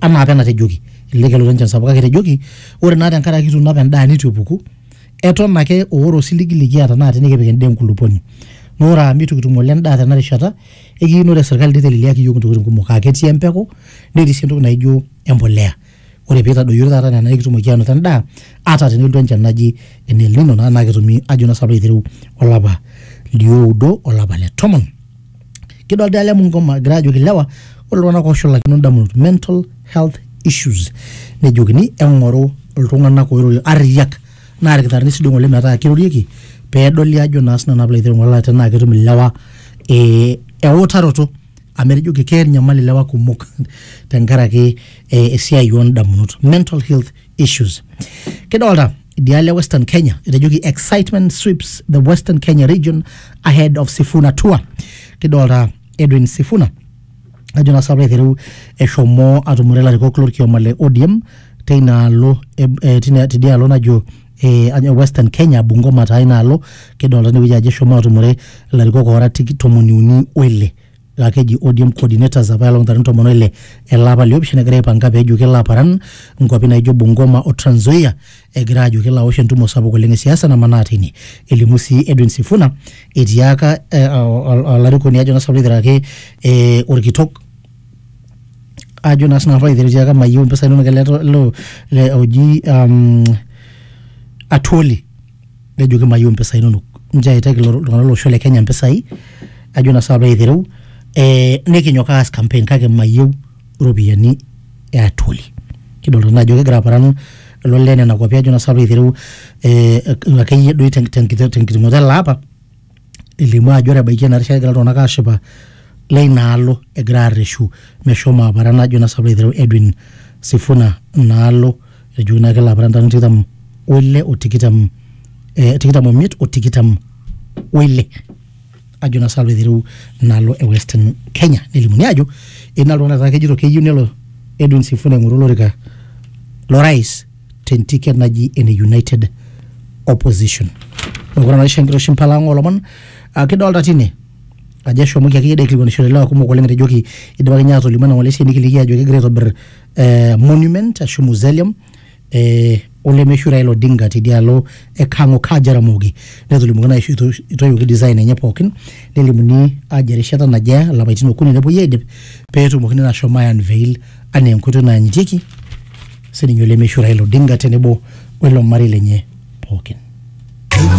anaa apa enatejoki ele kelo lenchan sapuk kake etejoki ore naa tenkaraki ituuno apa endaa nitu epuku eton ake oore osiligi likiata naa tinikipik endaa enkulupuoni naa ore amu itu kitum ng'ole endaa tena rishata ekiyieu naa ore serkali niteleliaki iyiook intokitin kumok aa ketii empeku netii sii entoki naijo empoleya ore pitadoyiori taata nena nikitumoki anoto endaa ata tenelotu enchan naji ene el nino naa naa ketumi ajo naa sinanu piilo aitereu olapa lioudo olapa le tomon. kidolta ele mungoma egira ajoki ilewa ore iltung'anak oshulakino indamunot mental health issues nejokini eng'oru iltung'anak oirorie arriyiak naa irkitarrini sidai ng'ole metaa kirorieki pedoli ajo naa sinanu naa piilo ainining'u olala tenaa ketum ilewa eh, eutaroto amu etejoki keeta enyamali ilewa kumok tenkaraki eh, esiai ondamunot mental health issues kidolta idialo e western kenya etejoki excitement sweeps the western kenya region ahead of sifuna tour kidolta edwin sifuna ajo naa sapra aiteru eshomo atumore ilarikok lorkioma le odm teina alo e- e- tina- tidia alo najo eh, ajo western kenya bungoma taa ina alo kidolta inewueji ajo eshomo atumore ilarikok oora tiki- tomoniuni oile laa keji ODM coordinators apa elong tarin tomon oile ele apa liopishana egira aipanga pee ejo kelo aparan nkuapi naijo Bungoma o Trans Nzoia egira ajo kelo awosh entumo sapuk oleng e siasa namanaa tine. Elimu sii Edwin Sifuna etiaka eh, ol- olarikoni ajo naa sinanu aiteraki eh, orkitok ajo naa sinanu aiteraki etiaka mayieu impisai inonok ele to- lo- le- oji um, Atwoli nejoki mayieu impisai inonok nchoo aitaki ilo tung'anak lolosho le kenya impisai ajo naa sinanu piilo aitereu eh, nikinyok aas campaign kake mayieu iropiyiani e atuoli kidolta naa ajo kegira aparan lelo lee nena kuapi ajo naa sinanu piilo aitereu eh, akeyie doi tenkiti tenkiterunoto ele apa. elimu ajo ore ebaiki ena rishata egira iltung'anak aashipa leina alo egira arreshu meshomo aparan najo naa sababu aiteru Edwin Sifuna inaalo etejoki naa kelo aparan ntarikini tikitam oile o tikitam eh, tikitam omiet o tikitam oile ajo naa sababu aiteru inaalo e Western Kenya nelimuni ajo etii naa iltung'anak taata kejito keyieu nelo Edwin Sifuna aing'oru olorika lorais tentiket naji ene United Opposition. Mekure naa isho enkiroshi mpala ang olomon Ah, kidolta tine ajo eshomoki akeyie dee aikilikuanishore ilewa kumok oleng etejoki idipaki ninye atolimu ena ng'ole esiai nikiliki ajo kegira aitobir eh, monument ashu mausoleum eh, olemeshu Raila Odinga tidialo e Kang'o Kaj Jaramogi netolimuoki naa aisho ito- itoiwuoki design enye pookin nelimuni ajo erishata naje eya ilapaitin okuni nepuoi aidip petumokini naa ashom ae unveil anaa enkoitoi nayanyitieki sininye olemeishu Raila Odinga tenebo welo marei lenye pookin.